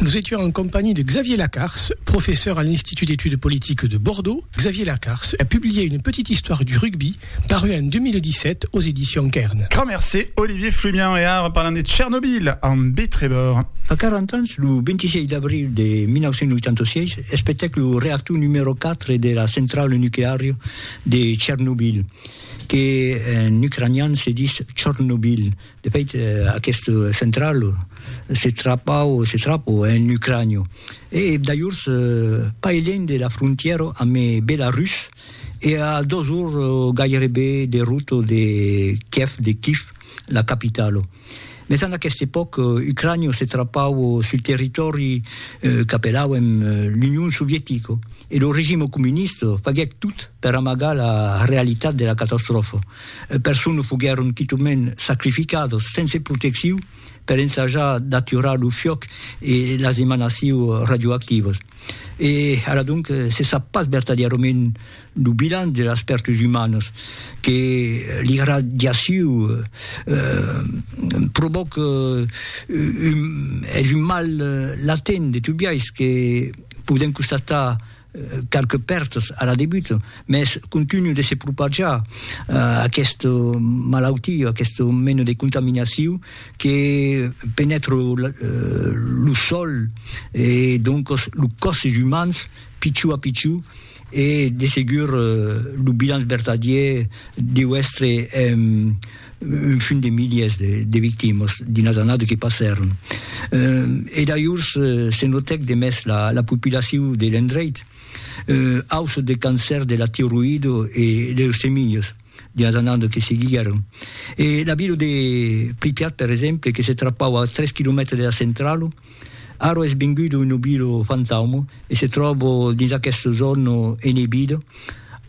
Nous étions en compagnie de Xavier Lacars, professeur à l'Institut d'études politiques de Bordeaux. Xavier Lacars a publié une petite histoire du rugby, parue en 2017 aux éditions Cairn. Grand merci Olivier Fluvian e ara parlam de Chernobyl amb Bé Trevor. A 40 ans, lo 26 d'abril de 1986, es petèc lo reactor numèro 4 de la centrala nucleària de Chernobyl, que en ucranian se ditz Chornobyl, De fait, aquest central se trapau, se trapo, en Ucrània, e dajors pas elènh de la frontièra amb Belarus e a dos ors gairebe de rota de Kiev, de Kif, la capitala. Mès en aquesta epòca, Ucrània se trapau sul territòri qu'apelauen l'Union Sovietica e lo regime comunista faguèt tot per amagar la realitat de la catastròfa. e persona foguèron quitament sacrificadas sense protecciu per ensajar d'aturar lo fuòc e las emanaciu radioactivas. E ara donc se sap pas vertadièrament lo bilan de las pèrtas umanas que l'irradiaciu provòca un es un mal latent de tobiais que podèm constatar Qualques pèrtas a la debut, mès continu de se propajar aquesta malautia, aquesta mena de contaminacion que penètra lo sòl e doncas los còsses umans pichon a pichon e de segur lo bilanç vertadièr deu èstre un fin de miliers de victimas dins las annadas que passèron. E dajors se notèc de mès la popilacion de l'endreit, auçò de cancèr de la tiroïda e leucemias dins las annadas que seguiguèron. E la vila de Pripyat, per exemple, que se trapava a tres quilomètres de la centrala, Aro es vengut un obilo fantaumo e se tròbo dins aqueste zòno enebida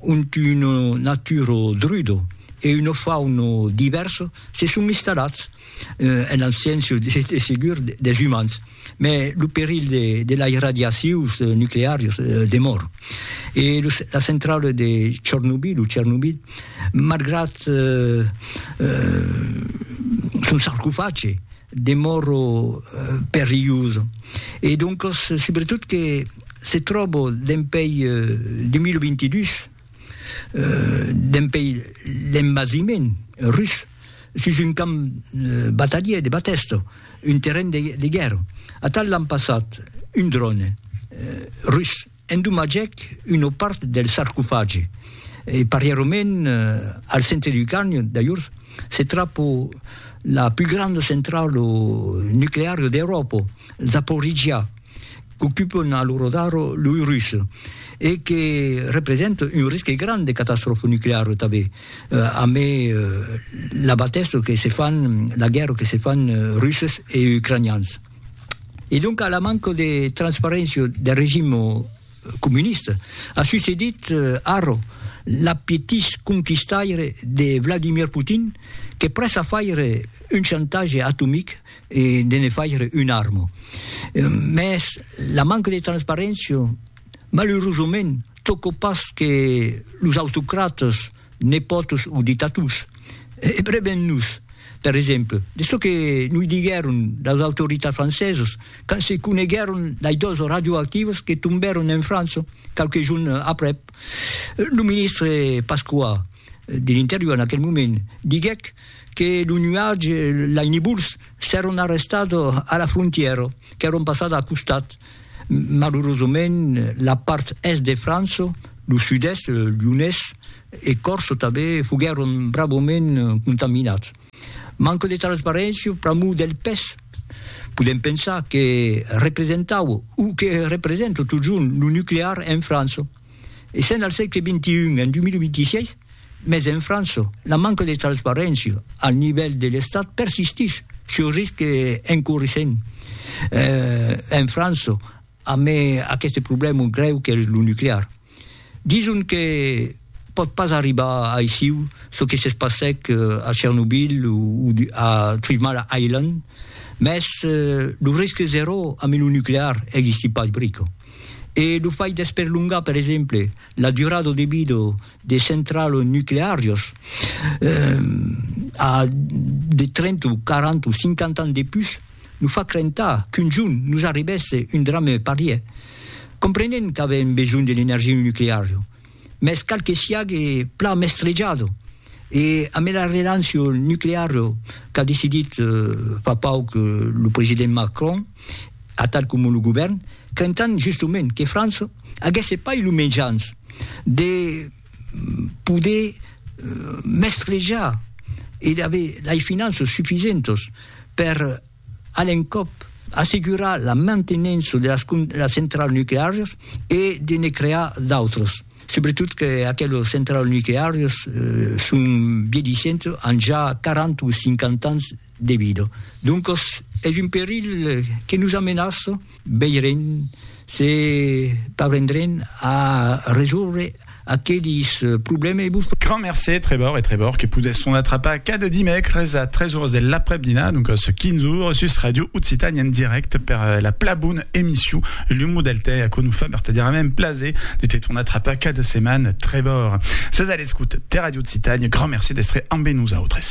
ont un naturo drudo e uno fauno divèrso se son instalats en abséncia, de segur, des umans. Mès lo perilh de las radiacions nucleàrias demòra. E la centrala de Chornobyl, o Chernobyl, malgrat son sarcofage, demòro perilhosa e doncas subretot que se tròbo dempèi 2022 dempèi l'envasiment rus sus un camp batalhier de batèsta, un terren de guèrra. Atal l'an passat un dròne rus. Endommagèc una part del sarcofagi e parièrament al centre du canyon, dajors, se trapo la pus granda centralo nuclearo d'Euròpa, Zaporizhia, qu'ocupen a l'ora d'ara loi russi e que representa un risque grand de catastròfa nucleara tanben, amé la batèssa que se fan, la guèrra que se fan russes e ucranians. E donc a la manca de transparéncia deth regim comunista a succedit ara l'apetís conquistaire de Vladimir Putin que près a faire un chantatge atomic e de ne faire una arma. Mès la manca de transparéncia, malerosament, tòca pas que los autocrates Nepòtos o de tatús, e breben nos, per exemple, de çò que noi diguèron las autoritats francesas quand se coneguèron dai dos radioactivos que tombèron en França qualques jorn aprèp. Lo ministre Pasqua, de l'Interior en aquel moment, diguèc que lo nuatge, lai nebúls, s'èron arrestats a la frontièra, qu'èron passats al costat. Malurosament, la part èst de França, lo sud-èst, Lyonés e Còrse tanben, foguèron bravament contaminats. Manca de transparéncia pr'amor del pes. Podèm pensar que representaue, o que representa totjorn, lo nuclear en França. e sèn al sègle xxi, en 2026, mès en França, la manca de transparéncia al nivèl de l'Estat persistís sus risc encourissent en França amé aqueste problèma grèu qu'es lo nuclear. Dison que pòt pas arribar aissiu çò que s'es passèc a Chernobyl o a Three Mile Island, mès lo risc zeró amé lo nuclear existís pas brica. E lo fai d'esperlongar, per exemple, la durada de vida de centrals nucleàrias a de 30 o 40 o 50 ans de pus, nos fa crentar qu'un jorn nos arribèsse un drame parièr, comprenent qu'avèm besonh de l'energia nucleària. mès cal que siague plan mestrejado e amb era relanço nuclearo qu'a decidit fa pauc lo president Macron atal coma lo govèrn, crentant justement que França aguèsse pas lo mejans de poder mestrejar e d'aver lei finanças sufisentas per A l'encòp, assegurar la mantenença de las centrals nucleàrias e de ne crear d'autras, subretot que aquelas centrals nucleàrias son vièlhissentas, an ja 40 o 50 ans de vida. Doncas es un perilh que nos amenaça. Veirem se parvendrem a resòrre aquelis problèmes. Grand mercé, Trevor e Trevor que podèsson atrapar cada dimècres a 3 ores de l'aprèp-dinar, doncas 15 ores, sus Ràdio Occitània en dirècte per la pla bona emission L'Humo del Tè. Aquò nos fa vertadièrament plaser de te tornar atrapar cada setmana, Trevor. Sètz a l'escota de Ràdio Occitània, grand mercé d'èstre ambe nosautres.